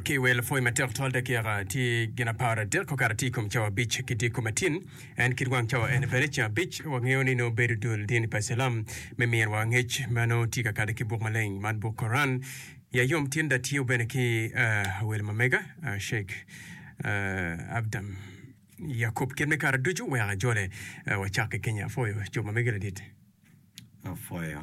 Ki iwer lapwony matek tutwal dakika tye gin apar adek okato atir i kom cawa abic ki dyekko matin. En kit wang cawa ene bene ceng abic. Wangeyo ni nongo bedo dul dini pa Cilam me myerwa angec ma nongo tye ka kade ki buk maleng man buk Koran. Ya yom tinda tiyo bene ki awelo ma mega Sheik Abdam Yakub kit me kare ducu wek ajole. Wacak ki Kenya. Apwoyo cob ma megi ladit. Apwoyo.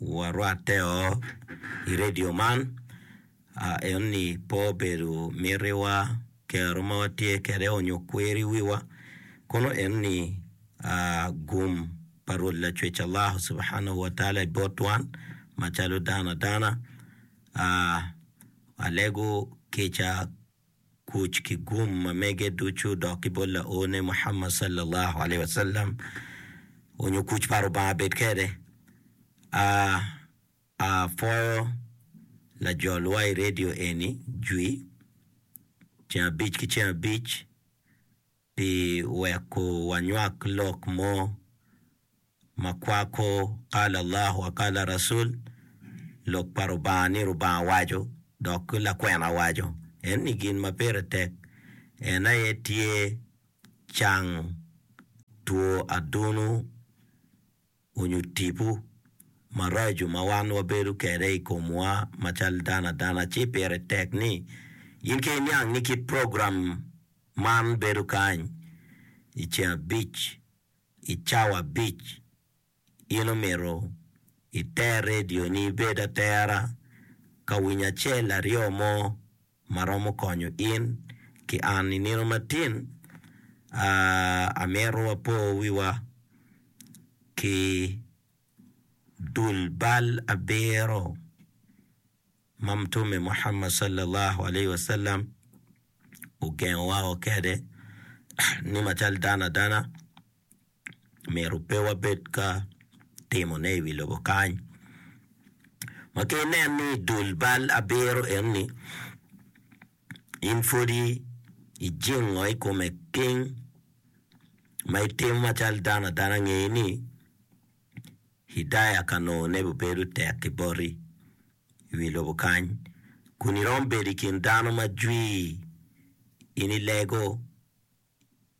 warwatte-o i redio man, ento pe obedo mitiwa, kero ma watye kwede onyo kwer i wiwa, kono en ni gum pa Rwot Lacwec Allah Subhanahu wa Taala i bot wan macalo dano adana, alego kica. kuc ki gum ma mege ducu dok ki bot laone Muhammad sallalahu alaihi wasallam onyo kuc pa Rubanga bed kede, a a pwoyo lajol wa i radio eni jwi ceng abic ki ceng abic. pi weko wanywak lok mo ma kwako Kala Allah wa Kala Rasul, Lok pa Rubanga ni Rubanga waco dok lakwena waco. Eni gin ma pire tek, en aye tye cang two adunu. onyo tipo maraco ma wan wabedo kede i komwa ma cal dano adana ci pire tek ni in ki iniang ni kit program man bedo kany i ceng abic i cawa abic. In omito iter radio ni ibed atera ka winyo acel aryo mo. ma romo konyo in ki an. I nino matin, amito wapo wiwa ki dul bal abiro ma Mutume Muhammad Sallallahu Alaihi Wasallam ogengo wako kede ni macalo dano adana. myero pe wabed ka timone i wi lobo kany. Ma ka inen ni i dul bal abiro enni in pwodi ijingo i kome king ma itimo macalo dano adana, nge ni Hidaya Kanone bibedo tek ki boti i wi lobo kany kun iromo bedo i kin dano ma jwir in ilego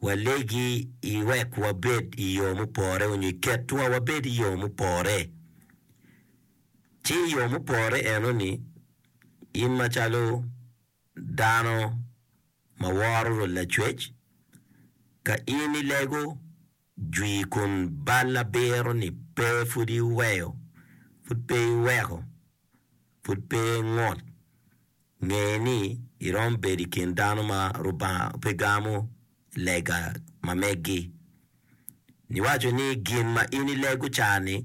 walegi i wek wabed i yo mupore onyo i ketwa wabed i yo mupore. Ci i yo mupore enoni, in macalo dano ma woro Rwot Lacwec, ka in ilego, Jwi kun bal abiro ni pe pud iweyo, pud pe iweko, pud pe ingut. Nge ni iromo bedo i kin dano ma Lubanga pe gamo lega ma megi. Niwaco ni gin ma in ilego ca-ni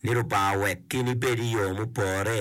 ni Lubanga owek in ibed i yo mupore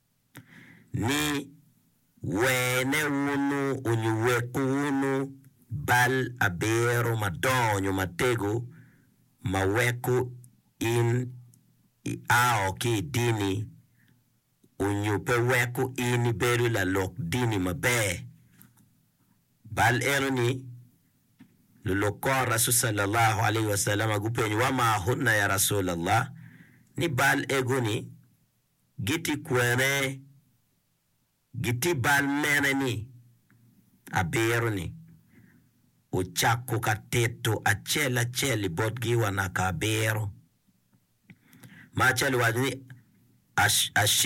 ni, Wene wunu onyo weko wunu bal abiro madongo onyo matego ma weko in i ao ki i dini onyo pe weko in i bedo lalok dini maber. Bal eno ni, luluk kor Rasul salallahu alaihi wasalama gupenyo, Wama hunna ya Rasul Allah? Ni bal ego ni giti kwene, giti bal mene ni, Abiro ni, ocako ka tito acel acel i botgi wa naka abiro. Ma acel owaco ni, Ash, ash,